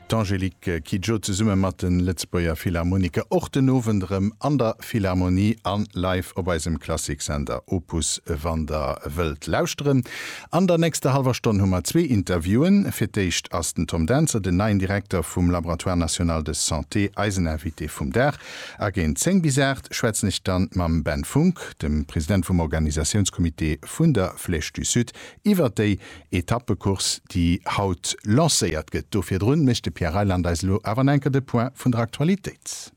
D'Angélique Kidjo zesumme mat de Lëtzebuerger Philharmoniker och den Owend erëm an der Philharmonie a live op eisem Klassiksender Opus. Wann der wëllt lauschteren, an der nächster hallwer Stonn hu mer zwee Interviewen. Fir d'éischt ass den Tom Dentzer, den neien Direkter vum Laboratoire National de Santé, eisen Invité vum Dag. A géint 10 bis 8 schwätzen ech dann mam Ben Funck, dem President vum Organisatiounscomité vun der Flèche du Sud, iwwer déi Etappecourse, déi haut lancéiert gëtt. Do virdrun mécht de Pierre Reyland eis elo awer nach eng Kéier de Point vun der Aktualitéit.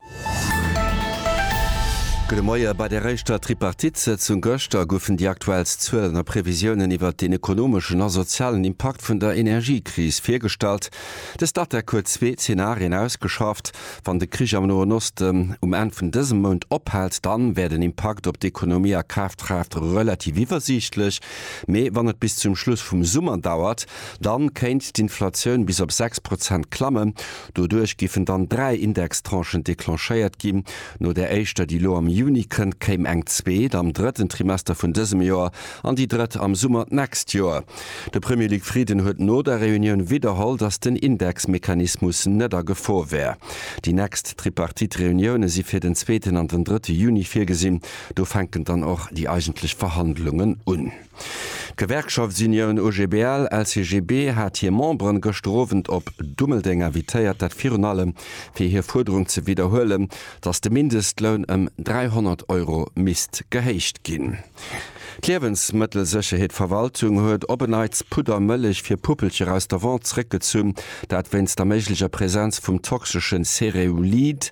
Gudde Moie. Bei der éischter Tripartite-Sëtzung gëschter goufen déi aktuellst Zuelen a Previsiounen iwwert den ekonomeschen a sozialen Impakt vun der Energiekris virgestallt. De Statec huet zwee Zenarien ausgeschafft. Wann de Krich am Noen Osten um Enn vun dësem Mount ophält, dann wär den Impakt op d'Ekonomie a Kafkraaft relativ iwwersiichtlech. Mee wann et bis zum Schluss vum Summer dauert, dann kéint d'Inflatioun bis op 6 Prozent klammen. Doduerch giffen dann dräi Indextranchen declenchéiert ginn. No der éischter, déi elo am Juni kënnt, kéim eng zweet am drëtten Trimester vun dësem Joer an déi drëtt am Summer d'nächst Joer. De Premier Luc Frieden huet no der Reunioun widderholl, datt den Indexmechanismus net a Gefor wär. Déi nächst Tripartite-Reunioune si fir den zweeten an den drëtte Juni virgesinn. Do fänken dann och déi eigentlech Verhandlungen un. D'Gewerkschaftsunioun OGBL, LCGB hat hir Memberen gëschter Owend op Dummeldeng invitéiert, dat virun allem fir hir Fuerderung ze widderhuelen, datt de Mindestloun ëm 300 Euro misst gehéicht ginn. D'Liewensmëttelsécherheetverwaltung huet op en Neits Pudder Mëllech fir Puppelcher aus der Vente zréckgezunn, dat wéinst der méiglecher Präsenz vum toxeschen Cereulid.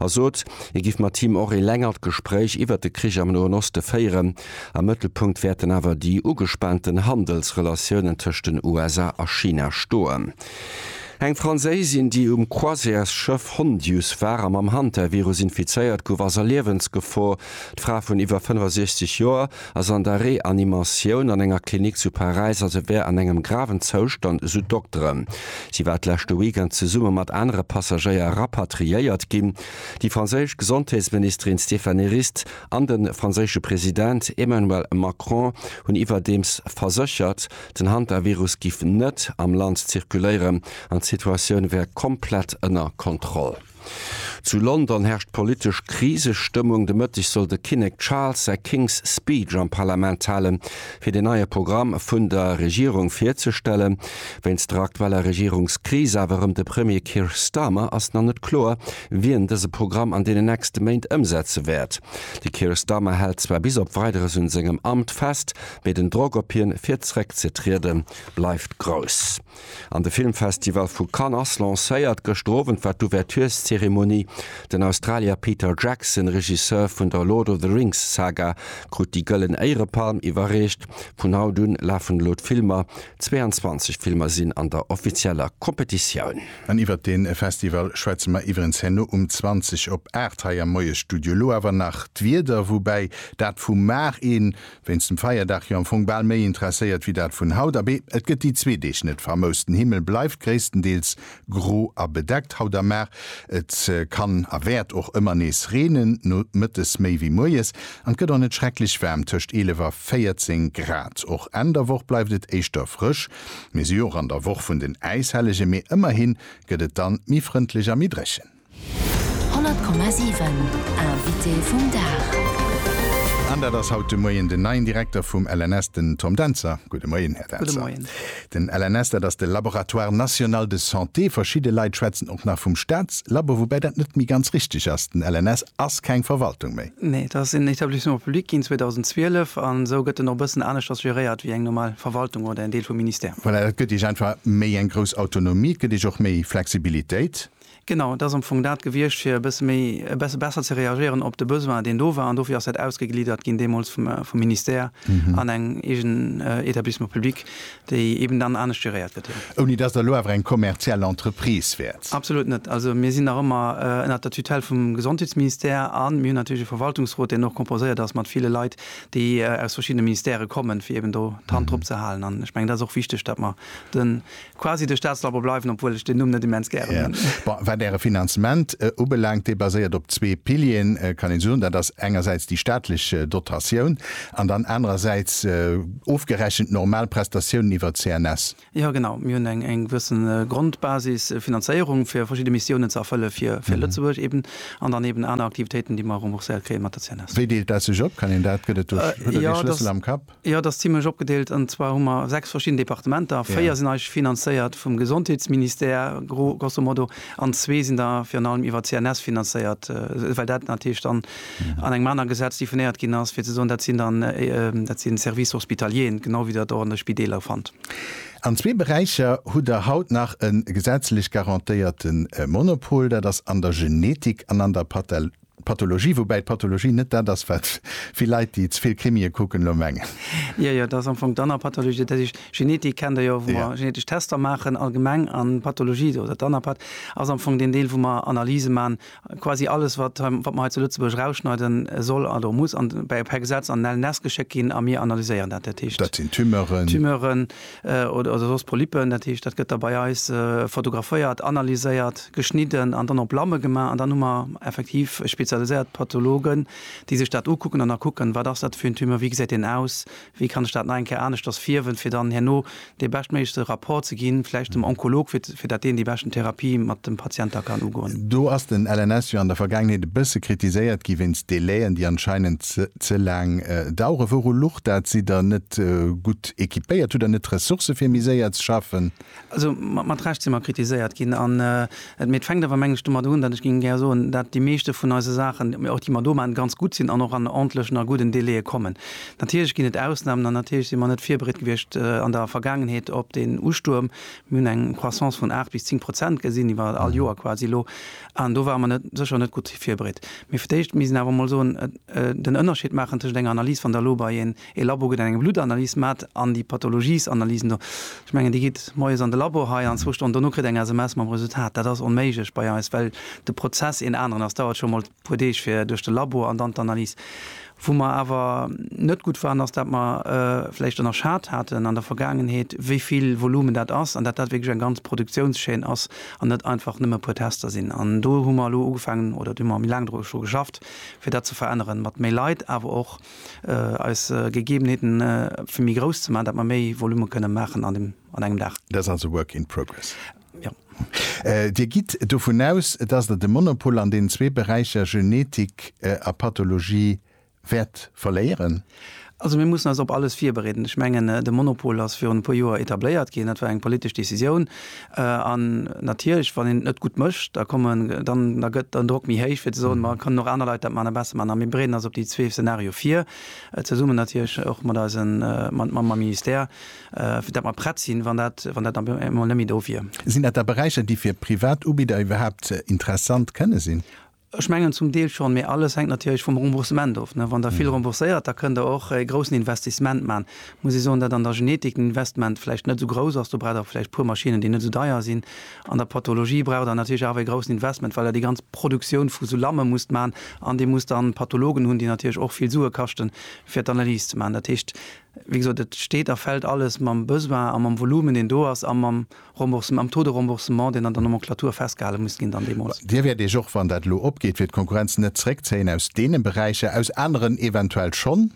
a sot, hie giff mat him och ee längert Gespréich iwwert de Krich am Noen Oste féieren. Am Mëttelpunkt wäerten awer déi ugespaanten Handelsrelatiounen tëscht den USA a China stoen. Eng Fransaisin, déi um Croisièresschëff Hondius war a mam Hantavirus infizéiert gouf, ass a Liewensgefor. D'Fra vun iwwer 65 Joer ass an der Reanimatioun an enger Klinik zu Paräis a se wär an engem graven Zoustand, esou d'Dokteren. Si war d'leschte Weekend zesumme mat anere Passagéier rapatriéiert ginn. Déi franséisch Gesondheetsministerin Stéphanie Rist an de franséische President Emmanuel Macron hunn iwwerdeems verséchert, den Hantavirus giff net am Land zirkuléieren an d'Situatioun wär komplett ënner Kontroll. Zu London herrscht politesch Krisestëmmung. De Mëtteg soll de Kinnek Charles säi King's Speech am Parlament halen, fir den neie Programm vun der Regierung virzestellen. Wéinst der aktueller Regierungskris, awer erëm de Premier Keir Starmer, ass nach net kloer, wien dëse Programm an deenen nächste Méint ëmsetze wäert. De Keir Starmer hält zwar bis op Weideres un sengem Amt fest, mee den Drock op hien, fir zeréckzetrieden, bleift grouss. An de Filmfestival vu Cannes ass lancéiert. Gëschter Owend war d'Ouvertureszeremonie. Den Australier Peter Jackson, Regisseur vun der Lord of the Rings Saga, krut déi Gëllen Éierepalm iwwerreecht. Vun haut un lafen elo d'Filmer. 22 Filmer sinn an der offizieller Competitioun. An iwwert dee Festival schwätze mer iwwerens herno um 20 op 8 hei am Moiesstudio. Elo awer nach d'Wieder, woubäi dat vu mar een Wéinst dem Feierdag jo am Fong bal méi interesséiert wéi dat vun haut. Abee, et gëtt déi zwee Deeg net famous. Den Himmel bleift gréisstendeels gro a bedeckt haut a mar. Et kann a wäert och ëmmer nees reenen, nomëttes méi wéi moies. An et gëtt och net schrecklech waarm, tëscht 11 a 14 Grad. Och Enn der Woch bleift et éischter frësch. Mir si jo och an der Woch vun den Äishellege, mee ëmmerhi gëtt et dann méi frëndlech a méi dréchen. 100,7 Invité vum Dag. An dat ass haut de Moien den neien Direkter vum LNS, den Tom Dentzer. Gudde Moien, Här Dentzer. Gudde Moien. Den LNS, dat ass de Laboratoire National de Santé. Verschidde Leit schwätzen och nach vum Staatslabo, woubäi dat net méi ganz richteg ass. Den LNS ass keng Verwaltung méi. Nee, dat ass en Établissement public ginn 2012 a sou gëtt en och e bëssen aneschters geréiert wéi eng normal Verwaltung oder en Deel vum Ministère. Voilà, dat gëtt Iech einfach méi eng grouss Autonomie, et gëtt Iech och méi Flexibilitéit. Genau, et ass am Fong dat gewiescht, fir e bësse méi, e bësse besser ze reagéieren op de Besoin, deen do war. An dofir ass dat ausgegliddert ginn deemools vum Ministère an eng eegen Établissement public, déi eeben dann anescht geréiert gëtt. Jo. Ouni dass Der elo awer eng kommerziell Entreprise wäert? Absolut net. Also mir sinn nach ëmmer ënnert der Tutelle vum Gesondheetsministère a mir hunn natierlech e Verwaltungsrot, deen och composéiert ass mat ville Leit, déi aus verschiddene Ministèrë kommen, fir eeben do d'Hand drop ze halen. An ech mengen, dat ass och wichteg, datt mer de Quasi de Staatslabo bleiwen, obwuel ech deen Numm net immens gären hunn. Bon, wat Äre Finanzement ubelaangt, dee baséiert op zwee Pilieren, kann een soen. Dat ass engersäits déi staatlech Dotatioun an dann anerersäits ofgerechent normal Prestatiounen iwwer d'CNS. Jo, genau. Mir hunn eng gewësse Grondbasisfinanzéierung, fir verschidde Missiounen ze erfëlle fir Lëtzebuerg eben, an dann eben aner Aktivitéiten, déi mer rembourséiert kréie mat der CNS. Wéi deelt dat sech op? Kann een dat, gëtt et do, hutt Der dee Schlëssel am Kapp? Jo, et ass zimlech opgedeelt. An zwar hu mer sechs verschidden Departementer. Véier sinn eigentlech finanzéiert vum Gesondheetsministère, gro-, grosso modo, an zwee sinn da virun allem iwwer CNS finanzéiert, well dat natierlech dann an engem anere Gesetz definéiert ginn ass, fir ze soen, dat sinn dann, dat si Services hospitaliers, genau wéi Der et och an de Spideeler fannt. An zwee Beräicher hutt Der haut nach e gesetzlech garantéierte Monopol, dat ass an der Genetik an an der Pathologie, woubäi d'Pathologie net dat ass, wat vill Leit, déi ze vill Krimie kucken, elo mengen. Jo, jo, dat ass am Fong d'Anner Pathologie. Dat heescht, Genetik kennt Der jo, wou mer genetesch Tester maachen allgemeng. An d'Pathologie do, oder d'Anapath, ass am Fong deen Deel, wou mer Analyse maachen, quasi alles, wat mer hei zu Lëtzebuerg erausschneide soll oder muss, an per Gesetz an LNS geschéckt ginn a mir analyséieren dat. Dat heescht. Dat sinn Tumeuren. Tumeuren. oder soss Polypen, dat heescht dat gëtt da bei eis fotograféiert, analyséiert, geschnidden an dann op Lamme gemaach an dann hu mer effektiv spezialiséiert Pathologen, déi sech dat ukucken an da kucken, wat ass dat fir en Tumeur, wéi gesäit deen aus, wéi kann ech dat nach eng Kéier aneschters fierwen, fir dann herno dee beschtméiglechste Rapport ze ginn, vläicht dem Onkolog, fir dat deen déi beschten Therapie mat dem Patient da kann ugoen. Do ass den LNS jo an der Vergaangenheet e bësse kritiséiert gi wéinst Délai'en, déi anscheinend ze laang daueren. Wouru lucht dat? Sidd Der net gutt gutt equipéiert? Hutt Der net d'Ressourcë fir méi séier ze schaffen? Also mat Recht si mer kritiséiert ginn. An et, mee et fänkt awer, meng ech, domat un, datt ech géing gär soen, datt déi meeschte vun eise Saachen, mee och déi mer do maachen, ganz gutt sinn an och an ordentlechen a gudden Délaië kommen. Natierlech ginn et Ausnamen an natierlech si mer net virbereet gewiescht an der Vergaangenheet op deen Ustuerm. Mir hunn eng Croissance vun 8 bis 10 Prozent gesinn iwwer all Joer quasi elo an do ware mer net, sécher net gutt virbereet. Mee fir d'éischt, mir sinn awer emol soen, den Ënnerscheed maachen tëschent enger Analys, wann Der elo bei een E Labo gëtt eng Bluttanalys maat an déi Pathologiesanalysen do, ech mengen déi geet moies an de Labo hei an zwou Stonnen dono kritt eng SMS mam Resultat. Dat ass onméiglech bei eis, well de Prozess een aneren ass. Dauert scho mol puer Deeg fir duerch de Labo an dann d'Analys. Wou mer awer net gutt waren ass dat mer vläicht ënnerschat haten an der Vergaangenheet wéi vill Volumen dat ass an dat dat wierklech eng ganz Produktiounschaîne ass an net einfach nëmme puer Tester sinn. An do hu mer elo ugefaangen oder do hu mer méi laang dru geschafft fir dat ze veränneren mat méi Leit awer och eis Gegebenheeten fir méi grouss ze maachen, dat mer méi Volume kënne maachen an dem, an engem Dag. Dat ass also work in progress. Jo. Dir gitt dovun aus, dass Der de Monopol an deenen zwee Beräicher Genetik a Pathologie wäert verléieren? Also mir mussen eis op alles virbereeden. Ech mengen, de Monopol ass virun e puer Joer etabléiert ginn. Dat war eng politesch Decisioun. An natierlech wann een et net gutt mécht, da kommen, dann, da gëtt den Drock méi héich fir ze soen, ma et kënnen och aner Leit dat maachen a besser maachen. A mir bereeden eis op déi zwee Szenarioe vir, zesummen natierlech och mat eisen, mat, mam, mam Ministère, fir dat mer prett sinn, wann dat, wann dat dann eemol net méi do wier. Sinn dat da Beräicher, déi fir Privatubidder iwwerhaapt interessant kënne sinn? Ech mengen zum Deel schonn, mee alles hänkt natierlech vum Remboursement of. Wann Der vill rembourséiert, da kënnt Der och e groussen Investissement maachen. Et muss ee soen, datt an der Genetik den Investment vläicht net esou grouss ass. Do braucht Der vläicht e puer Maschinnen, déi net esou deier sinn. An der Pathologie braucht Der natierlech awer e groussen Investment, well Der déi ganz Produktioun vu sou Lamme musst maachen an Dir musst dann Pathologen hunn, déi natierlech och vill Sue kaschten, fir d'Analyse ze maachen. Dat heescht, wéi gesot, et steet a fält alles mam Besoin a mam Volumen, deen do ass, a mam. Remboursement, am Taux de remboursement, deen an der Nomenclature festgehale muss ginn dann deemools. Dir wäert iech och, wann dat elo opgeet fir d'Konkurrenz, net zréckzéien aus deene Beräicher, aus aneren eventuell schonn?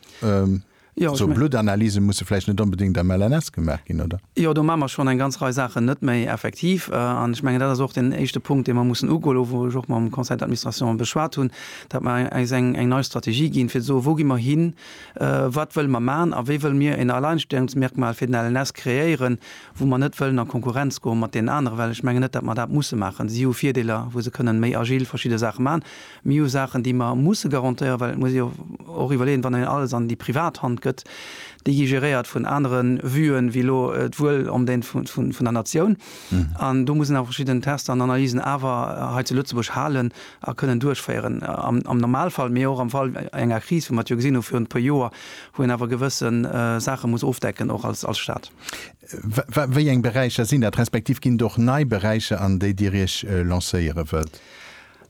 Esou Bluttanalyse musse vläicht net onbedéngt am LNS gemaach ginn, oder? Jo, do maache mer schonn eng ganz Rei Saachen net méi, effektiv. An ech mengen, dat ass och deen éischte Punkt, dee mer mussen ugoen, elo wou ech och mam Conseil d'administration beschwat hunn, datt mer eis eng nei Strategie ginn, fir ze soen, wou gi mer hin, wat wëlle mer maachen a wéi wëlle mir en Alleinstellungsmerkmal fir den LNS kreéieren. wou mer net wëllen a Konkurrenz goe mat deenen anere, well ech mengen net, datt mer dat musse maachen. Si hu Virdeeler, wou se kënnen méi agil verschidde Saache maachen. Mir hu Saachen, déi mer musse garantéieren, well et muss ee jo och iwwerleeën, wann een alles an déi privat Hand gëtt, déi gi geréiert vun anere Vuen wéi elo d'Wuel an d'Dénst vun der Natioun. An do muss een awer verschidden Tester an Analysen awer hei zu Lëtzebuerg halen a kënnen duerchféieren. Am Normalfall, mee och am Fall enger Kris, wéi mer et jo gesinn hu virun e puer Joer, wou een awer gewësse Saache muss ofdecken, och als Stat. Wéi eng Beräicher sinn dat, respektiv ginn et och nei Beräicher, an déi Dir Iech lancéiere wëllt?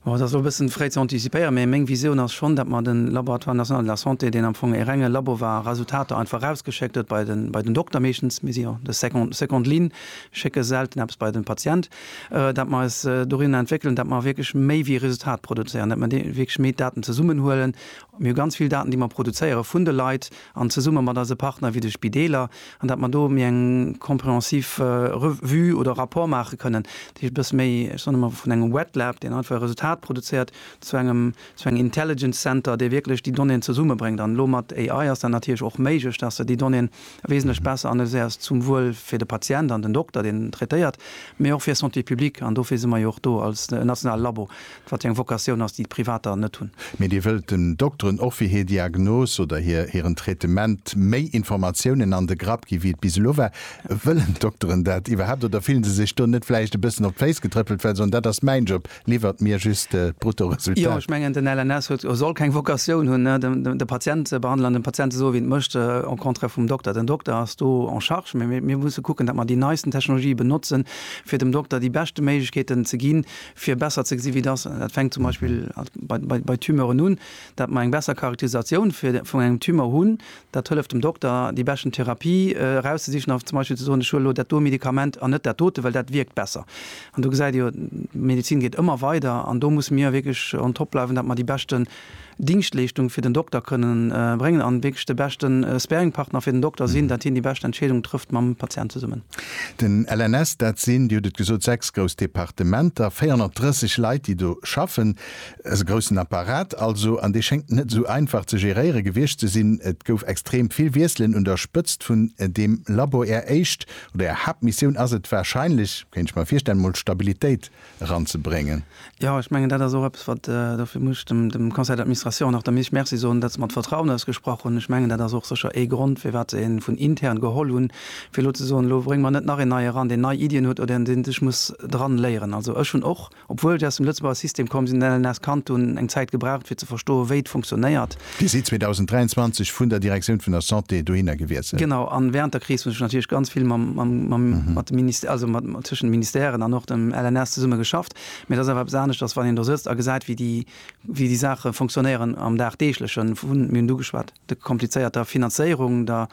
Oh, et ass elo e bëssen fréi ze antizipéieren, mee meng Visioun ass schonn, datt mer de Laboratoire national de la santé, deen am Fong e renge Labo war, Resultater einfach erausgeschéckt huet bei den, bei den Dokter meeschtens, mir si jo de second, seconde ligne, schécke selten eppes bei den Patient, datt mer eis dorin entwéckelen, datt mer wierklech méi wéi e Resultat produzéieren, datt mer wierklech méi Daten zesummenhuelen. Mir hu ganz vill Daten, déi mer produzéiere vun de Leit, an zesumme mat eise Partner wéi de Spideeler, an dat mer do méi eng comprehensiv Revue oder Rapport maache kënnen, déi ech e bësse méi, ech soen ëmmer, vun engem Wet Lab, deen einfach e Resultat produzéiert, zu engem, zu engem Intelligence Center, dee wierklech déi Donnéeën zesummebréngt. An elo mat AI ass dat natierlech och méiglech, dass se déi Donnéeën wesentlech besser analyséiert, zum Wuel fir de Patient an den Dokter, deen traitéiert, mee och fir Santé publique, an dofir si mer jo och do als nationale Labo, Wat fir eng Vocatioun ass déi d'Privater net hunn? Mee Dir wëllt den Dokteren och fir hir Diagnos oder hir hiren Traitement méi Informatiounen an de Grapp gi wéi et bis elo war. Wëllen d'Dokteren dat iwwerhaapt oder fillen se sech do net vläicht e bëssen op d'Féiss getrëppelt, well se soen, dat ass mäin Job, liwwert mir just d'Bruttoresultat? Jo, ech mengen den LNS huet a soll keng Vocatioun hunn de Patient ze behandelen an dem Patient ze soen wéi en et mécht, au contraire vum Dokter. Den Dokter ass do en charge, mee mir musse kucken, datt mer déi neisten Technologië benotzen, fir dem Dokter déi beschte Méiglechkeeten ze ginn, fir besser ze gesi wéi dass, dat fänkt zum Beispill bei Tumeuren un, dat mer eng besser Charakterisatioun vun engem Tumeur hunn, dat hëlleft dem Dokter déi beschten Therapie erauszesichen a zum Beispill ze soen, ech huelen elo dat do Medikament an net dat dote, well dat wierkt besser. An do gesäit Dir jo, d'Medezin geet ëmmer weider an do musse mir wierklech on top bleiwen, dat mer déi beschten Dingschtleeschtung fir den Dokter kënne bréngen an wierklech de beschte Sparingpartner fir den Dokter sinn, dat hien déi bescht Entscheedung trëfft mam Patient zesummen. Den LNS, dat sinn, Dir hutt et gesot, sechs grouss Departementer, 430 Leit, déi do schaffen, e groussen Apparat also, an dee schéngt net esou einfach ze geréiere gewiescht ze sinn. Et gouf extrem vill Wiesselen un der Spëtzt vun deem Labo. Är éischt oder Är Haaptmissioun ass et wahrscheinlech, kéint ech mer virstellen, emol Stabilitéit eranzebréngen. Jo, ech mengen, dat ass och eppes, wat, dofir muss ech dem Conseil d'administration nach der Mich Merci soen, datt se mer d'Vertrauen ausgesprach hunn. Ech mengen, dat ass och sécher ee Grond, firwat se ee vun intern geholl hunn, fir elo ze soen, elo brénge mer net nach een Neie eran, deen nei Iddien huet oder deen sech muss dran léieren. Also ech hunn och, obwuel ech aus dem Lëtzebuerger System komm sinn, LNS kannt hunn, eng Zäit gebraucht, fir ze verstoen, wéi et funktionéiert. Dir sidd 2023 vun der Direktioun vun der Santé dohinner gewiesselt. Genau, a während der Kris hunn ech natierlech ganz vill mam, mam, mam, mat de Ministè, also mat, tëschent de Ministèren an och dem LNS zesumme geschafft. Mee et ass awer eppes aneschters, wann een do sëtzt a gesäit, wéi déi, wéi déi Saache fonctionnéieren am dagdeeglechen. Vu, mir hunn et ugeschwat, der komplizéierter Finanzéierung, der,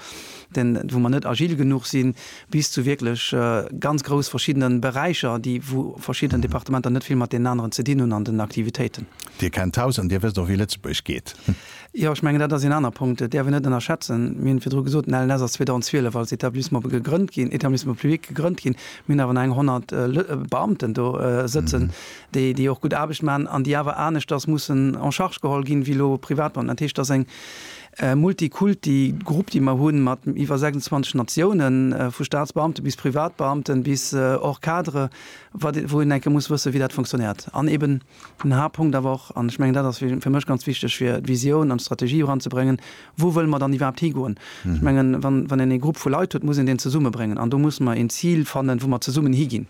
den, wou mer net agil genuch sinn, bis zu wierklech ganz grouss verschiddene Beräicher, déi, wou verschidden Departementer net vill mat deenen aneren ze dinn hunn an den Aktivitéiten. Dir kennt d'Haus an Dir wësst och, wéi Lëtzebuerg geet. Jo, ech mengen, dat ass een aner Punkt. Dat däerf een net ënnerschätzen. Mir hunn virdru gesot, den LNS ass 2012 als Établissement gegrënnt ginn, Établissement public gegrënnt ginn. Mir hunn awer nach eng 100 Beamten do sëtzen, déi, déi och gutt Aarbecht maachen an déi awer aneschters mussen en charge geholl ginn, wéi elo Privatbeamten. Dat heescht, dat ass eng, Ee Multikulti Grupp, dee mer hunn, mat iwwer 26 Natiounen, vu Staatsbeamte bis Privatbeamten, bis och Cadre, wat, wou een enke muss wëssen, wéi dat funktionéiert. An eeben den Haaptpunkt awer och, an ech mengen, dat ass fir mech ganz wichteg, fir d'Visioun an d'Strategie eranzebréngen, Wou wëlle mer dann iwwerhaapt higoen? Ech mengen, wann, wann een ee Grupp vu Leit huet, muss een deen zesummebréngen. An do muss mer een Zil fannen, wou mer zesummen higinn.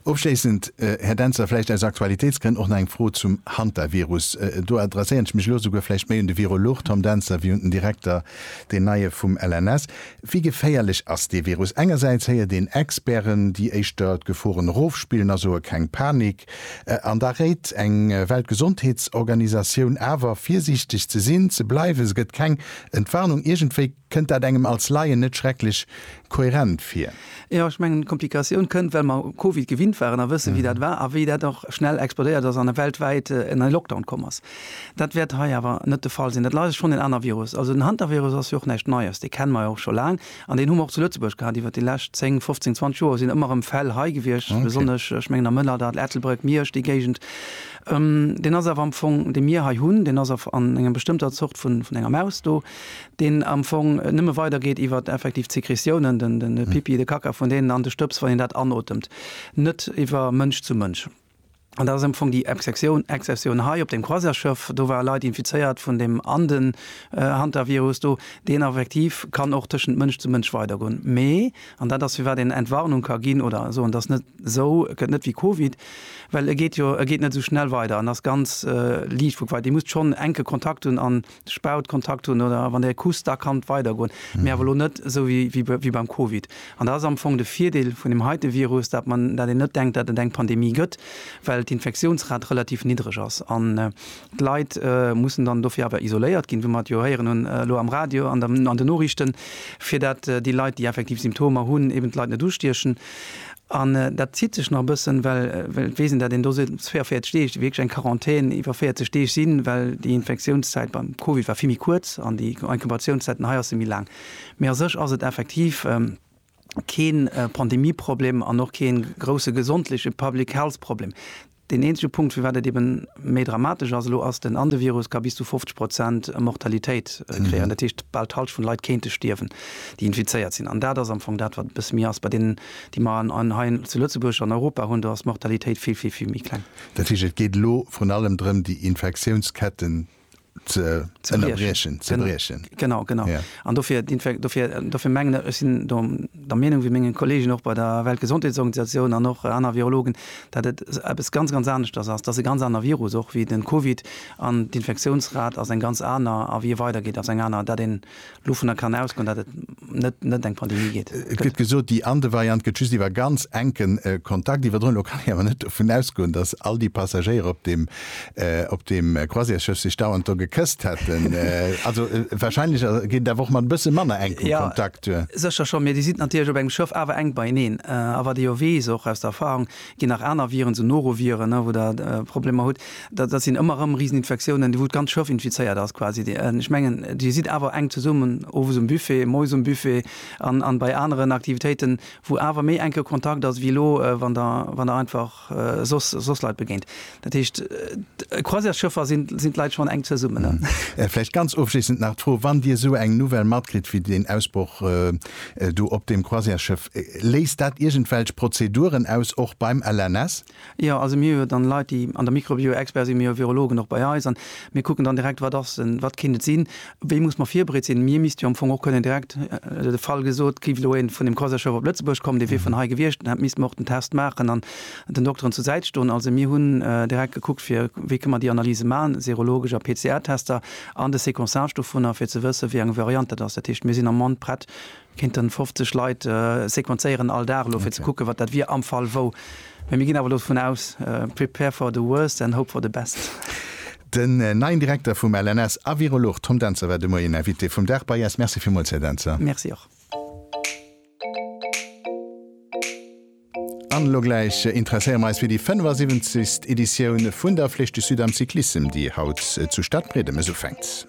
Ofschléissend, Här Dentzer, vläicht aus Aktualitéitsgrënn och nach eng Fro zum Hantavirus. Do adresséieren ech mech elo souguer vläicht méi un de Virolog Tom Dentzer wéi un den Direkter, deen neie vum LNS. Wéi geféierlech ass dee Virus? Engersäits héiert een Experten, déi éischter d'Geforen erofspillen a soe keng Panik. An da réit eng Weltgesondheetsorganisatioun awer, virsiichteg ze sinn, ze bleiwen. Se gëtt keng Entwarnung. Iergendwéi kënnt dat engem als Laien net schrecklech kohärent vir. Jo, ech mengen, d'Komplikatioun kënnt, well mer u Covid gewinnt waren a wëssen, wéi dat war a wéi dat och schnell explodéiert ass an e weltwäit en en Lockdown komm ass. Dat wäert hei awer net de Fall sinn. Dat lei schonn en aner Virus. Also den Hantavirus ass jo och näischt Neies. Dee kenne mer jo och scho laang an deen hu mer och zu Lëtzebuerg gehat iwwert déi lescht 10, 15, 20 Joer sinn ëmmer erëm Fäll hei gewiescht, besonnesch, ech mengen am Mëllerdall, Ettelbréck, Miersch, déi Géigend. Deen ass awer am Fong, dee mir hei hunn, deen ass a an enger bestëmmter Zort vun enger Maus do. deen am Fong nëmme weidergeet iwwert effektiv d'Sekretiounen, den, den Pipi, de Kacka vun deenen an de Stëbs, wann een dat anotemt, net iwwer Mënsch zu Mënsch. An dat ass am Fong déi Exceptioun, Exceptioun hei op deem Croisièresschëff. Do ware Leit infizéiert vun deem Anden, Hantavirus do, deen effektiv kann och tëschent Mënsch zu Mënsch weidergoen. Mee, an dat ass firwat een Entwarnung ka ginn oder soen, dass net esou gëtt net wéi Covid, well e geet jo, e geet net esou schnell weider an ass ganz liicht vu quai. Dir musst schonn enke Kontakt hunn an Spaut, Kontakt hunn oder wann Der kusst, da kann et weidergoen, mee awer elo net esou wéi beim Covid. An dat ass am Fong de Virdeel vun deem heite Virus, dat mer, dat een net denkt, dat et eng Pandemie gëtt, well d'Infektiounsrate relativ niddreg ass an d'Leit mussen dann dofir awer isoléiert ginn, wou mer et jo héieren hunn elo am Radio an den Noriichten, fir dat déi Leit, déi effektiv Symptomer hunn, eben d'Leit net ustiechen. An dat zitt sech nach e bëssen, well ech weess, datt een do seet, et muss 44 Deeg, déi wierklech eng Quarantän iwwer 40 Deeg sinn, well déi Infektiounszäit beim Covid war vill méi kuerz an déi Inkubatiounszäiten hei ass se méi laang. Mee a sech ass et effektiv kee Pandemieproblem an och kee grousse gesondleche Public-Health-Problem. Deen eenzege Punkt, firwat et eeben méi dramatesch ass elo, ass den, an de Virus ka bis zu 50 Prozent Mortalitéit kreéieren. Dat heescht, bal d'Halscht vun de Leit kéinte stierwen, déi infizéiert sinn. An dat ass am Fong dat, wat e bësse méi ass. Bei deenen, déi mer an hei zu Lëtzebuerg, an Europa hunn, do ass d'Mortalitéit vill, vill, vill méi kleng. Dat heescht, et geet elo vrun allem drëm, déi Infektiounsketten Genau genau an dofir dofir mengen ech sinn der Meenung wéi menge Kolleegen och bei der Weltgesondheetsorganisatioun an och aner Virologen, datt et eppes ganz ganz aneschters ass. Et ass e ganz aner Virus och wéi den Covid an d'Infektiounsrat ass eng ganz aner a wéi e weidergeet ass eng aner. Dat een Dovunner kann ausgoen, datt et net eng Pandemie gëtt. Et gëtt gesot, déi ande Variant gëtt just iwwer ganz enke Kontakt iwwerdroen. Elo kann ee awer net dovun ausgoen, datt all déi Passagéier op deem Croisièresschëff sech dauernd do gekësst hätten. Also warscheinlech geet et awer och mat e bësse manner enkem Kontakt duer. Jo, sécher schonn, mee Dir sidd natierlech op engem Schëff awer enk beieneen. A wat ee jo weess, och aus der Erfarung, Ginn nach aner Viren, sou Noroviren, wou Der Problemer hutt. Dat sinn ëmmer erëm Riseninfektiounen, wou d'ganz Schëff infizéiert ass quasi. Ech mengen, Dir sidd awer enk zesummen owes um Buffet, moies um Buffet an bei aneren Aktivitéiten, wou awer méi enke Kontakt ass wéi elo, wann Der einfach soss Leit begéint. Dat heescht, Croisièresschëffer sinn d'Leit schonn enk zesummen. Vläicht ganz ofschléissend nach d'Fro, Wann Dir esou eng Nouvelle matkritt wéi deen Ausbroch do op deem Croisièresschëff, léist dat iergendwelch Prozeduren aus, och beim LNS? Jo, also mir hu jo dann Leit, déi an der Mikrobioexperte sinn. Mir hu Virologen och bei eis an mir kucken dann direkt, Wat ass en, wat kéint et sinn, wéi muss mer virbereet sinn? Mir misste jo am Fong och kënnen direkt, de Fall gesot, géif elo ee vun deem Croisièresschëff op Lëtzebuerg kommen, dee wier vun hei gewiescht, dann misste mer och den Test maachen. den Dokteren zur Säit stoen. Also mir hunn direkt gekuckt fir, wéi kënne mer déi Analyse maachen, serologesch a PCR-Tester an de Sequençage dovunner, fir ze wëssen, wéi eng Variant dat ass. Dat heescht, mir sinn am Moment prett, kéinten 50 Leit sequenzéieren all Dag elo, fir ze kucken, wat dat wier am Fall wou. Mä mir ginn awer elo dovun aus, prepare for the worst and hope for the best. Den neien Direkter vum LNS a Virolog Tom Dentzer war de Moien Invité vum Dag bei eis. Merci villmools, Här Dentzer. Merci och. An elo gläich interesséiere mer eis fir déi 75. Editioun vun der Flèche du Sud am Cyclissem, déi haut zu Stadbriedemes ufänkt.